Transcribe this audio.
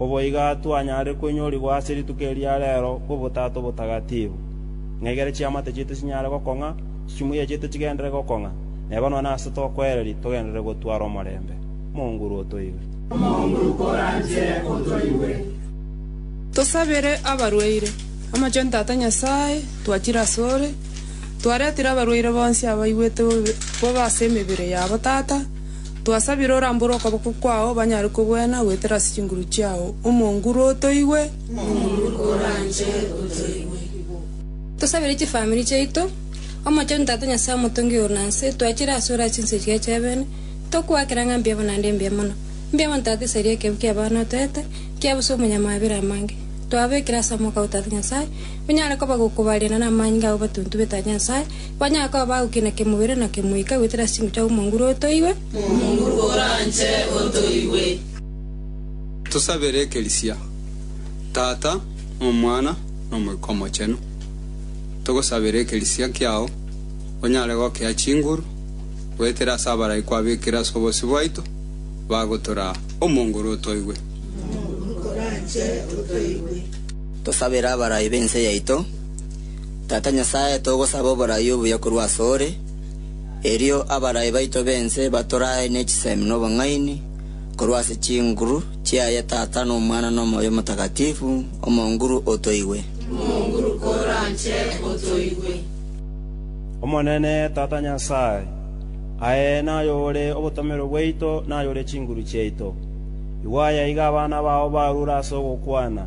Oboiga twanyare koinyorigwa ase rituko eria rero kw'Obotato Obotagatifu, ng'egere chiamate chiaito chinyare gokong'a, chimuya chiaito chigenderere gokong'a, na eba nonya nase tokoereria togenderere gotwara omorembe. Mounguru otoigwe. Mounguru koranche otoigwe. Tosabere abarwaire. Omochenu Tata Nyasae, twachire asore, twaretire abarwaire bonsi abaigwete bobe ase emebere yabo, Tata, Twasabire orambore okoboko kwao banyare kogwena goetera ase chinguru chiao. Omonguru otoigwe. Omonguru oranche otoigwe. Tosabire chifamiri chiaito, Omochenu Tata Nyasae Omotongi oigoro na nse, twachire ase ore ase ense chiaito y'ebeene, tokogoakera ng'a mbiabo naende mbuya mono. Mbuya mono Tata esaria ekeegu ki'abana otoete, kiabo ase omonyamabera amange. Twabekire ase amoko ao Tata Nyasae, onyare kobagokoba rienda namanyinga ao batuntubete Tata Nyasae, Onye akoba bagokia na kemobere na kemoika, goetera ase chinko chiabo omonguru otoigwe. Omonguru oranche otoigwe. Tosabere ekerisia. Tata, na Omwana, na Omoika Omochenu, togosabera ekerisia kiao onyare gokea chinguru, goetera ase abarai kwabekire ase obosio bwaito, bagotora omonguru otoigwe. Omonguru oranche otoigwe. Tosabere abarai b'ense yaito. Tata Nyasae, togosaba oboraai obuya korwa asore, erio abarai baito b'ense batoraae ne chisemi n'obong'aini, korwa ase chinguru chiaye Tata, n'Omwana, n'Omoyo Omotakatifu, Omonguru, otoigwe. Omonguru, koranche, otoigwe. Omonene, Tata Nyasae, aye naye ore obotomero bwaito, naye ore chinguru chiaito. Igwa aye aiga abana bao barure ase ogokwana,